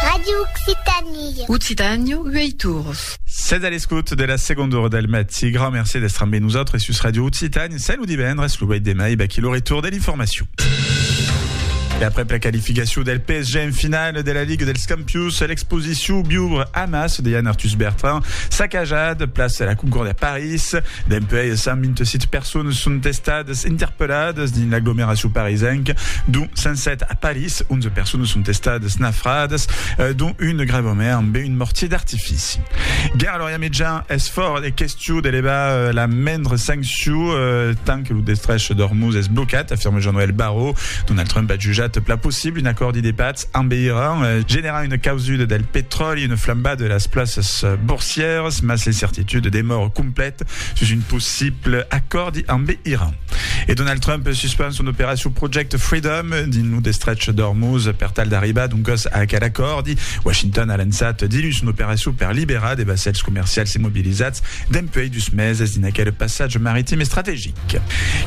Radio Occitanie. Occitània, uèi torns. Sètz a l'escòt de la segonda ora del matí. Grand merci d'èstre ambe nosautres sus Radio Occitània. Salut divendres, lo uèi demai, vaquí lo retorn de l'informacion. E après la qualificacion del PSG en finale de la Ligue dels Campions, l'exposition Biubre Hamas de Yann Arthus Bertrand, sacajat, place la Concorde à Paris, País. Dempuèi es 128 personas son estadas interpelladas dins l'aglomeracion parisenca, dont 107 a París, 11 personas son estadas nafradas, dont una gravament ambe un mortier d'artifici. Gèrard Lorian Mitjà, Es fòrt e question de levar la mendra sanccion tant que lo destrech d'Ormuz es blocat, afirma Jean-Noël Barrot. Donald Trump a jutjat pla possible un acòrdi de patz. En Iran, generar una causuda del petròli, una flambada de las plaças borsièras, mas l'incertitude demòra complèta sus un possible acòrdi amb Iran. E Donald Trump suspend son operacion Project Freedom dins lo destrech d'Ormuz per tal d'arribar doncas a aquel acòrdi. Washington a lançat dilluns son operacion per liberar de vassèls comercials immobilizats dempuèi dus meses dins aquel passatge maritim estrategic.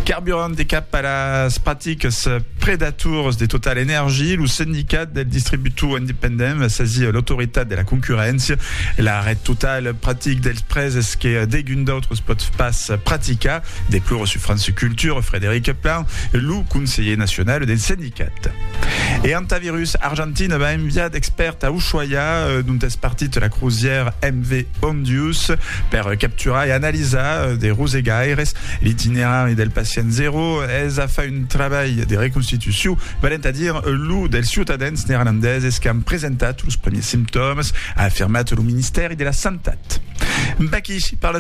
Carburant e cap a las practicas predatoras de Total Energy, lo Sindicat del Distributor Independent va sasir l'Autoritat de la Concurréncia e la Ret Total Practic dels prèses que degun d'autres pòt pas practicar, declora sur France Culture Frédéric Plan, lo conselher nacional del sindicat. E Hantavirus Argentina va enviar d'expèrts a Ushuaia, dont es partit la crozièra MV Ondius, per capturar e analizar de rosegaires. L'itinerari del pacient zero es a far un trabalh de reconstitucion, valent a dire lo dels ciutadans neerlandeses qu'an presentat los primièrs simptòmas, a afirmat lo ministèri de la Santat.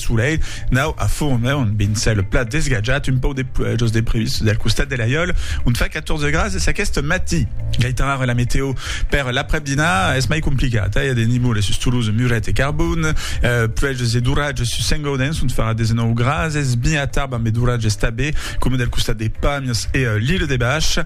Solelh nau a Fourme, ont bin cèl plat desgatjat, un pauc de pluèja jos de previst del costat de l'Aiòl, ont fa 14 grads es aqueste matí. Gaitan ara la meteo per l'aprèp dinar es mai complicata, i a de nivoles sus Toulouse, Muret e Carbon, pluèjas e d'oratges sus Saint-Gaudens, ont farà 19 grads, es bin a Tarbes ambe d'oratges tabé, coma del costat de Pàmies e l'Ile de Bach,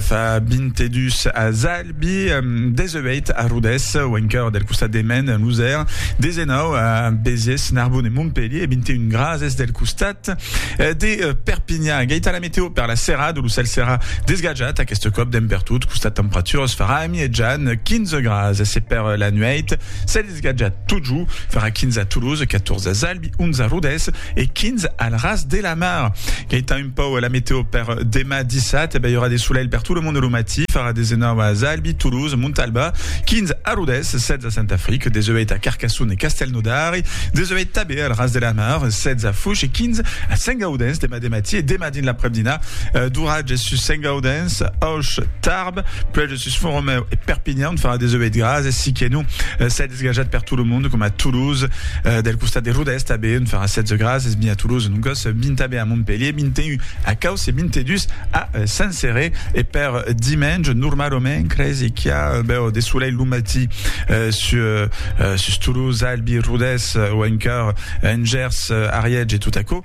fa 22 a Zall. Bi 18 a Rodés, au encòr del costat de Maine, en Losèr, 19 a Béziers, Narbonne e Montpelhier e 21 grases del costat de Perpinhan. Gaita la meteo per la serada, lo cèl serà desgatjat aqueste còp dempertot, costat temperaturas farà amietjan 15 grases e per la nuèit, Esgatja totjou, farà 15 a Toulouse, 14 a Zalbi, 11 a Rodés e 15 al Ras de la Mar. Gaita un pauc la meteo per demà dissat, e ben i aurà de solelh per tot lo monde lo matí, farà 19 a Zalbi, Toulouse, Montalba, 15 a Rodés, 16 a Saint-Affrique, 18 a Carcassonne e Castelnaudari, 18 tanben al Ras de la Mar, 16 a Foix e 15 a Saint-Gaudens demà de matí e demà dins l'aprèp-dinà d'oratges sus Saint-Gaudens, Auch, Tarbes, Sus Foromeu e Perpinhan on farà 18 graas e siqué non s'ai desgajat per tot lo monde coma Toulouse del costat de Rodèst a be on farà 16 graas es mi a Toulouse non còs 20 a be a Montpellier 21 a Causse 22 a Saint-Céré e per dimenge normalament cresi qu'i a bèu de solelh lo matí sus Toulouse Albi Rodès o encara en Gers Ariège e tot aquò.